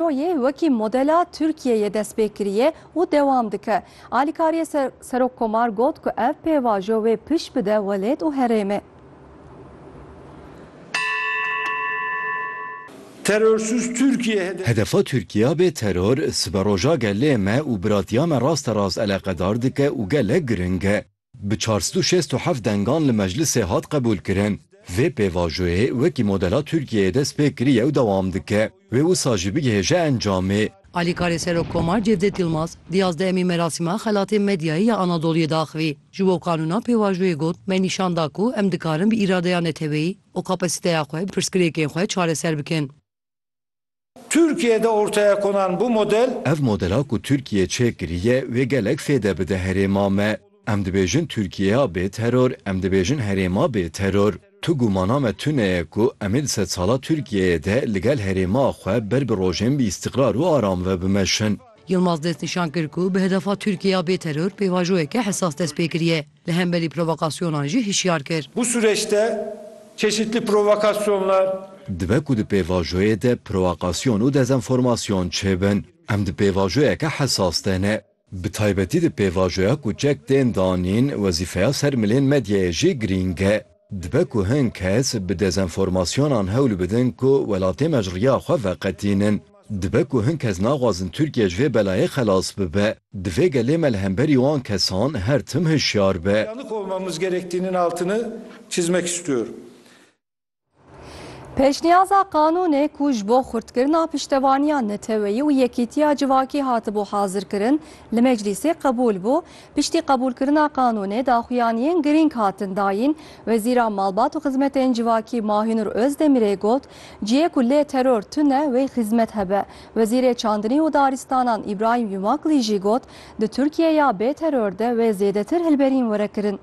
Rojê wekî modela Tirkiyeyê dest pê kiriye û dewam dike. Alîkariyê Serokkomar got ku ev pêvajo wê pişt bide welêt û herêmê. Terörsüz Türkiye hedefi. Hedefa Tirkiya bê teror, siberoja gelê me û biratiya me raste rast eleqedar dike û gelek giring e. Bi çar sed û şêst û heft dengan li meclisê hat qebûlkirin. Vê pêvajoyê wekî modela Tirkiyeyê dest pê kiriye û dewam dike. Wê wisa jî bigihêje encamê. Alîkarê Serokkomar Cevdet Yilmaz di yazdehemîn merasîma Xelatê Medyayê ya Anadoluyê de axivî. Ji bo kanûna pêvajoyê got, Me nîşan da ku em dikarin bi îradeya neteweyî û kapasîteya xwe pirsgirêkên xwe çareser bikin. Tirkiye de ortaya konan bu model. Ev modela ku Tirkiye çêk kiriye wê gelek fêde bide herêma me. Em dibêjin Tirkiyeya bê teror, em dibêjin herêma bê teror. Tu gumana me tune ye ku em ê di sedsala Tirkiyeyê de li gel herêma xwe ber bi rojên bi îstîqrar û aram ve bimeşin. Yilmaz destnîşan kir ku bi hedefa Tirkiyeya bê teror pêvajoyeke hesas dest pê kiriye. Li hemberî provokasyonan jî hişyar kir. Bu sureçte çeşitli provokasyonlar. Dibe ku di pêvajoyê de proakasyon û dezenformasyon çêbin. Em di pêvajoyeke hesas de ne. Bi taybetî di pêvajoya ku çek tên danîn, wezîfeya ser milên medyayê jî girîng e. Dibe ku hin kes bi dezenformasyonan hewl bidin ku welatê me ji riya xwe veqetînin. Dibe ku hin kes naxwazin Tirkiye ji vê belayê xelas bibe. Divê gelê me li hemberî wan kesan her tim hişyar be. Pêşniyaza qanûnê ku ji bo xurtkirina piştevaniya neteweyî û yekîtiya civakî hatibû hazirkirin, li meclîsê qebûl bû, Piştî qebûlkirina qanûnê daxuyaniyên girîng hatin dayîn. Wezîra Malbat û Xizmetên Civakî Mahinur Ozdemirê got, Cihê ku lê teror tune wê xizmet hebe. Wezîrê Çandinî û Daristanan Îbrahîm Yumakli jî got, Di Tirkiyeya bê teror de wê zêdetir hilberîn were kirin.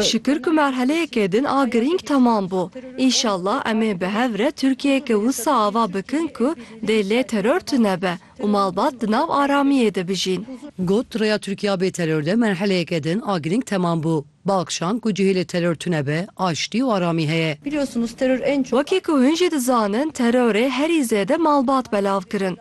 Şikir ku merheleyekê din a girîng temam bû. Înşallah em ê bi hev re Tirkiyeyeke wisa ava bikin ku dê lê teror tunebe û malbat di nav aramiyê de bijîn. Got, Rêya Tirkiya bê teror de merheleyeke din a girîng temam bû. Biakşand ku cihê lê teror tunebe, aştî û aramî heye. Wekî ku hûn jî dizanin terorê herî zêde malbat belav kirin.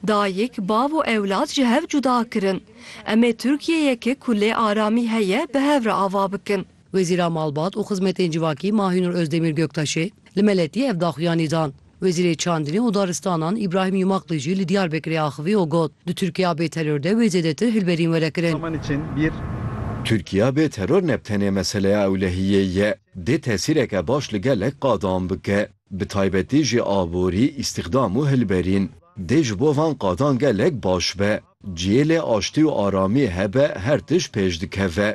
Dayik, bav û ewlad ji hev cuda kirin. Em ê Tirkiyeyeke ku lê aramî heye bi hev re ava bikin. Wezîra Malbat û Xizmetên Civakî Mahînur Ozdemîr Göktaşê li Meletiyê ev daxuyanî dan. Wezîrê Çandinê û Daristanan Îbrahîm Yumakli jî li Diyarbekirê axivî û got, Di Tirkiya bê teror de wê zêdetir hilberîn were kirin. Tirkiya bê teror ne bi tenê meseleya ewlehiyê ye, dê tesîreke baş li gelek qadan bike. bi taybetî jî aborî, îstîxdam û hilberîn. Dê ji bo van qadan gelek baş be. Cihê lê aştî û aramî hebe her tişt pêş dikeve.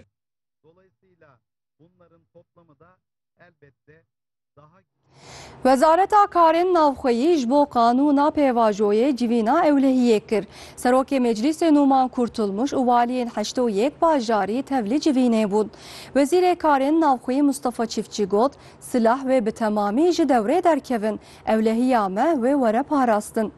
Wezareta Karên Navxweyî ji bo qanûna pêvajoyê civîna ewlehiyê kir. Serokê Meclîsê Nûman Kurtulmuş û waliyên heştê û yek bajarî tevlî civînê bûn. Wezîrê Karên Navxweyî Mustafa Çiftçî got, Silah wê bi temamî ji dewrê derkevin, ewlehiya me wê were parastin.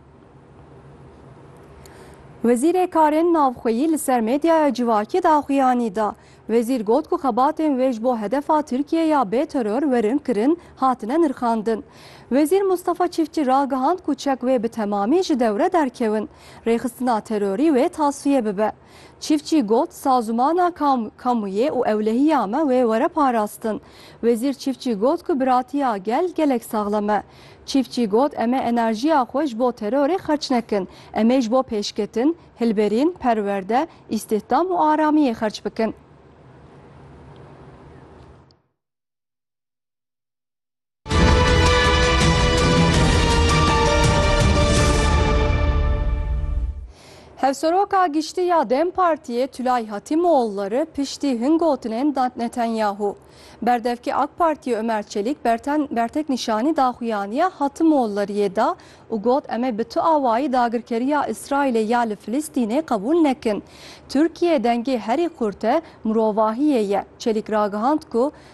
Wezîrê Karên Navxweyî li ser medyaya civakî daxuyanî da. Wezîr got ku xebatên wê ji bo hedefa Tirkiyê ya bê teror werin kirin hatine nirxandin. Wezîr Mustafa Çiftçi ragihand ku çek wê bi temamî ji dewre derkewin, rêxistina terorî wê tasfiye bibe. Çîfçî got, Sazûmana kam, kamûyê û ewlehiya me wê were parastin. Wezîr Çîfçî got ku biratiya gel gelek saxlem e. Çîfçî got, Em ê enerjiya xwe ji bo terorê xerç nekin. Em ê ji bo pêşketin, hilberîn, perwerde, îstîhdam û aramiyê xerç bikin. Hevseroka Giştî ya dem Partiyê Tulay Hatîmoğulları piştî hin gotinên Netanyahu berdevkê AK Partiyê Ömer Çelik bertek nîşanî daxuyaniya Hatimoğullariyê da û got em ê bi tu awayî dagirkeriya Îsraîlê ya li Filistînê qebûl nekin. Tirkiye dengê herî qurt e, mirovahiyê ye. Çelik ragihand ku